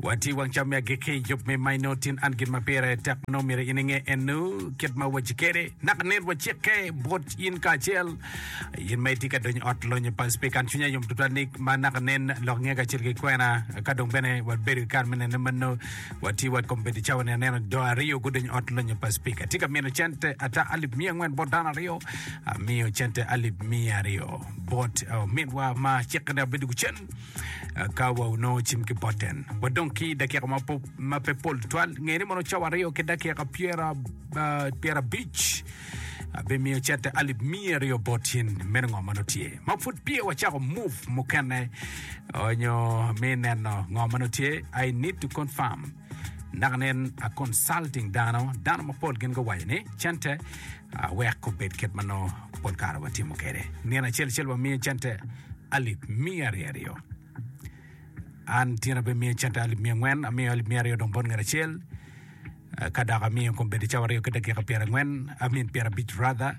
Wa ti wang cam me agikki i yub me maino tin an gin ma pire tek ma nongo myero in inge enu kit ma waci kede naka nit wacikke bot in kacel in ma itye ka donyo ot lonyo pa speak an cwinya yom tutwal ni ma naka nen lok nge kacel ki kwena ka dong bene wabedo i kar me nene mano wa ti wa kom bedi cawa ni aneno do aryo gudonyo ot lonyo pa speak atye ka mino cente ata alip miya angwen bot dano aryo amiyo cente alip miya aryo bot oh, mitwa ma cikke ne abedo gucen Ka wa onongo cim ki boten, wadong ki i dakika ma, po, ma pe pol twal, ngeni mono cawa aryo ki dakika pyera, ah, pyera abic, abimiyo cente alip miya aryo bot in, meno ngo ma nongo tye. Ma pud piye wacako move mukene, onyo mi neno ngo ma nongo tye, I need to confirm. Naka nen a consulting dano, dano mapol gin guwaco ni cente a wek obed kit ma nongo pol kare watimo kwede. Nino acel acel wamiye cente alip miya aryo aryo. An tyen abimiye cente alip miya angwen, amiyo alip miya aryo dong bot ngat acel. Ah, Ka dok amiyo kombedo cawa aryo ki dakika pyerangwen, amin pyerabic rather.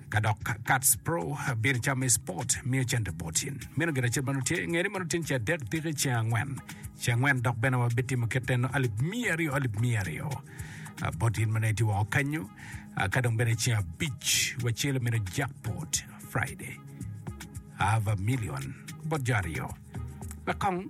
Ka dok Kats Pro bedo calo me spot, miyo cente botyen. Meno gire acel mano tye, ngeri mano tyen ci adek tiki ci angwen. Ci angwen dok bene wa bitimo kit eno alip miya aryo, alip miya aryo. Ah, Botyen mano iti woko kanyo. Ah, Ka dong bene ci abic wa celo meno jackpot Friday. Ava million bot jo aryo. Wek kong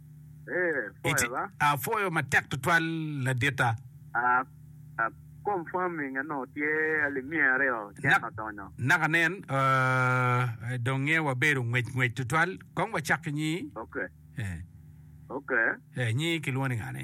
Apwoyo matek tutwal laditta. Naka nen, dong nge wabedo ngwec ngwec tutwal. Kong wacak ki nyi. Nyi kilwongo ni ngane?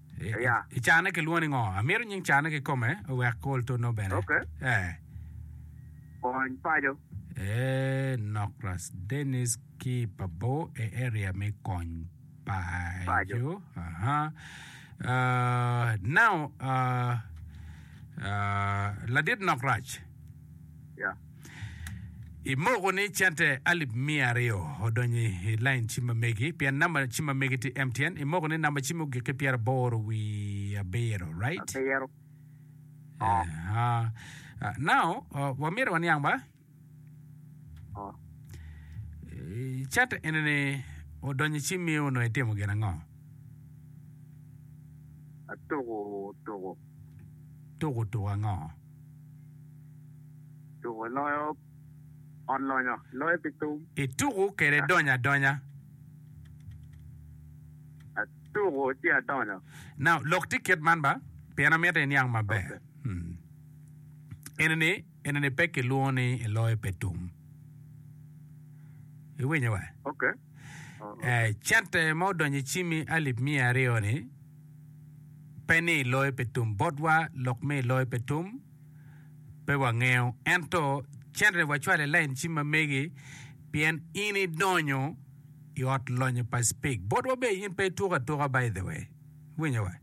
Aya. I carne kilwongo ni ngo? Amito nying carne kikome wek ol to no bene. Okay. Eh. Kony paco. Eh, nok Ras Dennis ki Pabo e area me kony paco. Paco. Aha. Uh, now, uh, uh, ladit nok Rac. Yeah. I moko ni cente alip mia aryo odonyo i lain cim ma megi pien namba cim ma megi tye MTN. I moko ni namba cim ogik ki pyera boro wi abiro, right? Abiro. Oh. Uh, uh, now, uh, wamito waniang ba? Oh. Cente eni ni odonyo i cim mi onongo itimo gin ango? Atuku tuku. Tuku tuku ango? Tuku loyo ot lonyo, loyo pi thum. Ituku kede donyo adonya. Atuku ci adonyo. Now, lok tye kit man ba, pien amito iniang maber. Okay. Hmm. Enini, enini pe kilwongo ni iloyo pe tum. Iwinyo wa? Okay. Cente ma odonyo i cimi alip miya aryo-ni pe ni loyo pe tum botwa lok me loyo pe tum pe wangeyo ento cente wacwalo i lain cim ma megi pien in idonyo i ot lonyo pa cpig botwa be in pe ituko atuka by the way winyo wa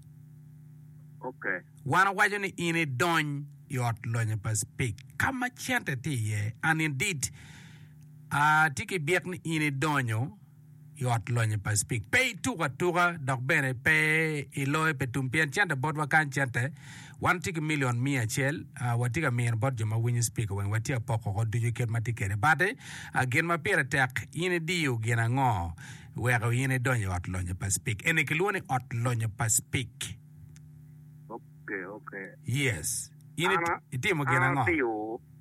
okay wan wawaco ni in idony i ot lonyo pa cpig ka ma cente tye iye and indeed Atye ki byek ni in idonyo i Ot Lonyo Pacific. Pe ituko atuka dok bene pe iloyo pe tum pien cente botwa kany cente. Wan watye ki milion miya acel, watye ka mino bot jo ma winyo spika weng watye ka poko oko ducu kit ma tye kwede bati. Gin ma pire tek in idiyo gin ango weko in idonyo i Ot Lonyo Pacific? Eni kilwongo ni Ot Lonyo Pacific. Okay, okay. Yes. In itimo gin ango?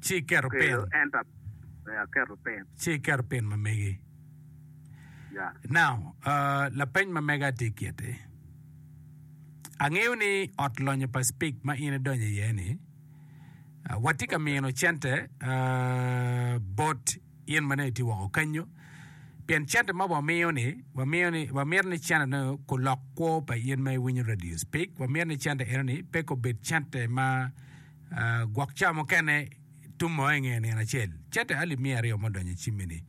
Ci keto pin. Aketo pin. Ci iketo pin ma megi. Yeah. Now, uh, lapeny ma mega tye kiti. Angeyo ni ot lonyo pa speak ma in idonyo iye ni, uh, watye ka mino cente uh, bot In ma nongo itye woko kenyo, pien cente ma wamiyo-ni, wamito ni cente nongo kulok kwo pa in ma iwinyo Radio Speak. Wamito ni cente enoni pe kubed cente ma gwok ca mukene tumo i nge nino acel. Cente alip miya aryo ma odonyo i cimmi-ni,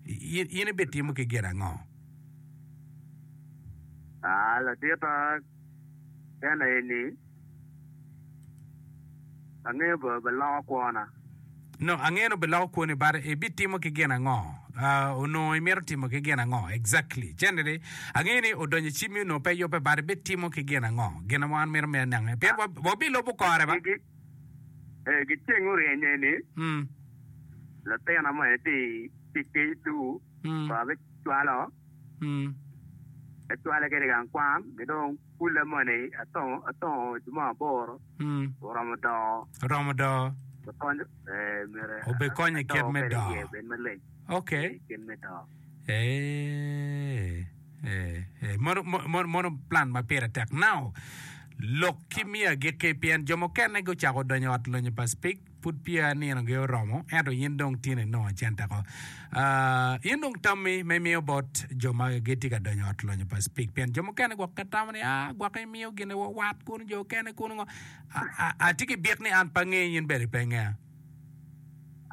in ibitimo ki gin ango? Aa, latika. Kene aye ni, Angeyo ba biloko kwona. No, angeyo ni biloko kwoni, but ibitimo ki gin ango? Uh, onongo imito timo ki gin ango? Exactly. Cene ni, angeyo ni odonyo i cimi onongo pe yubbe, but ibitimo ki gin ango? Gin ma wan mito me anenge. Pien wa- wabilubo kore ba. Gi- eh, gi ceng oryenye ni Mm, latina mo en ti ti kecu, mm. ko abicwalo Te cwale kene i gang kwan, ki dong kulle moni atongo juma aboro, oromo doo. Oromo doo. Obikonyo i kit me doo. Ok. Mono plan ma pire tek. Now, lok ki miyo agikki pien jo mukene gucako donyo i ot lonyo pa Spik. Pud peya nino ge oromo, ento in dong tin inongo acente ko. Uh, in dong tammi ma imiyo bot jo ma gitye ka donyo ot lonyo pa speak, pien jo mukene gwok ka tamo ni, ah, gwok imiyo gine wa wat kun jo kene kun ngo. A- a- Atye ki bit ni an pa ngeyi in bene pe ngeya.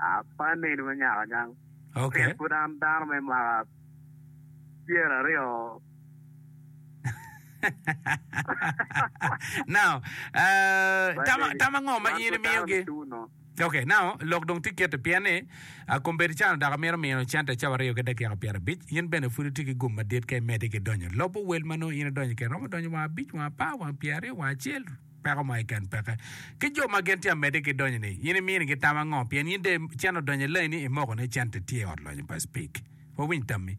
Ah, pa neni ma nyaka nyang. Okay. Pien pud an dano me mwaka pyeraryo now uh, tam tam ango ma in imiyogi Okay, now lok dong tye kiti pien ni ah, kombedi can dok amito mino cente cawa aryo ki dakika pyera abic in bene pud itye ki gum madit ka imedi ki donyo lobo wel ma nongo in idonyo kene romo donyo wang abic wang apar wang pyera aryo wang acel peko ma iken peke ki jo ma gin tye amedi ki donyo ni in iminigi tam ango pien in de cen odonyo i laini imoko ni cente tye i ot lonyo pa speak wawiny tammi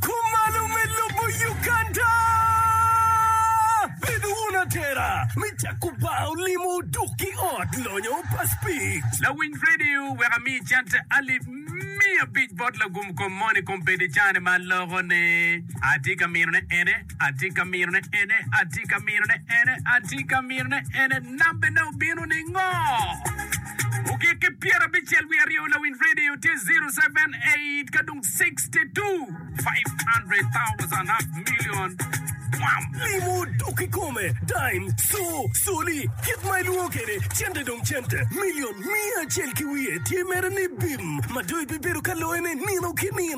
Kumalo me lobo Uganda. Bed wun atera me cako bar olimo dok ki ot lonyo pa Speed. Lawiny Radio wek ami cent alip miya abic bot lagum kom moni kom pede cane ma aloko ne. Atye ka mino ne ene. Atye ka mirone ene, atye ka mirone ene, atye ka mirone ene, nambene obino ningo? Ogik ki pyera abicel wiye aryo lawiny radio tye 078 ka dong 62 500,000 half million twam. Limo dok kikome, dime, so, soli, kit ma ilwongo kede cente dong cente, million miya acel ki wiye tye mere ni bim, ma dong ibibedo ka loyone nino ki nino.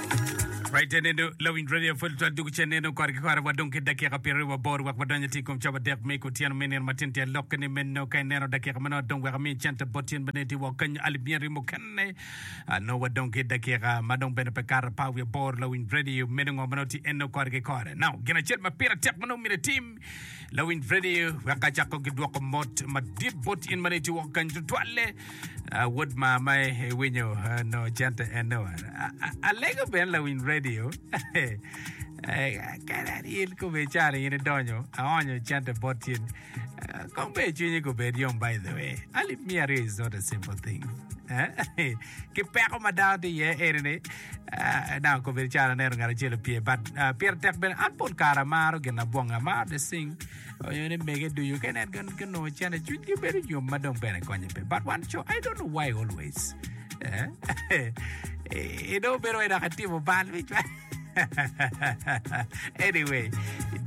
Right then endo lawiny radio full twal dugu cen endo kore ki kore wa dong ki dakika pyero aryo waboro wek wadonyo ti kom coba dek me kutyeno me nino matin tye lok ni meno ka ineno dakika meno dong wek mi cente bot tyen bene ti wok kanyo alip mia rimo kene ano wa dong ki dakika ma dong bene pe kara pa wi bor lawiny radio meno ngo meno ti endo kore ki kore now gin acel ma pira tek meno mire tim lawiny radio wek ka cako gidwoko mot madit bot in mene ti wok kanyo tutwalle Wod maa ma iwinyo nongo cente en nongo alego bene lawiny radio. Kare in kome cari in idonyo aonyo cente bot cin. Kong be cwinyi gubed yom by the way. Ali mia aryo is not a simple thing. Ki peko ma dano tye iye eri ni dang kome cari aneno ngat acel opye but pire tek bene an pol kare amaro gin abwongo amaro to sing Onyo ni mege ducu ka nen gin ginongo cene cwiny gi bedo yom ma dong bene konye pe. But wan co, I don't know why always. Eh? I dong bedo wai dok atimo bal mi cwal. anyway,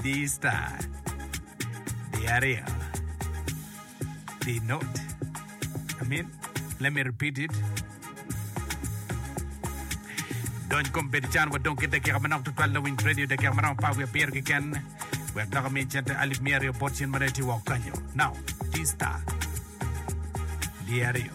D star. Di aryo. Be not. I mean, let me repeat it. Dony kom bedo can wa dong ki dakika manok tutwal lawiny radio dakika maromo par wiye pyero kiken wek dok mi cente alip miya aryo bot cin mane ti wok kanyo. Now, T-Star. Diario.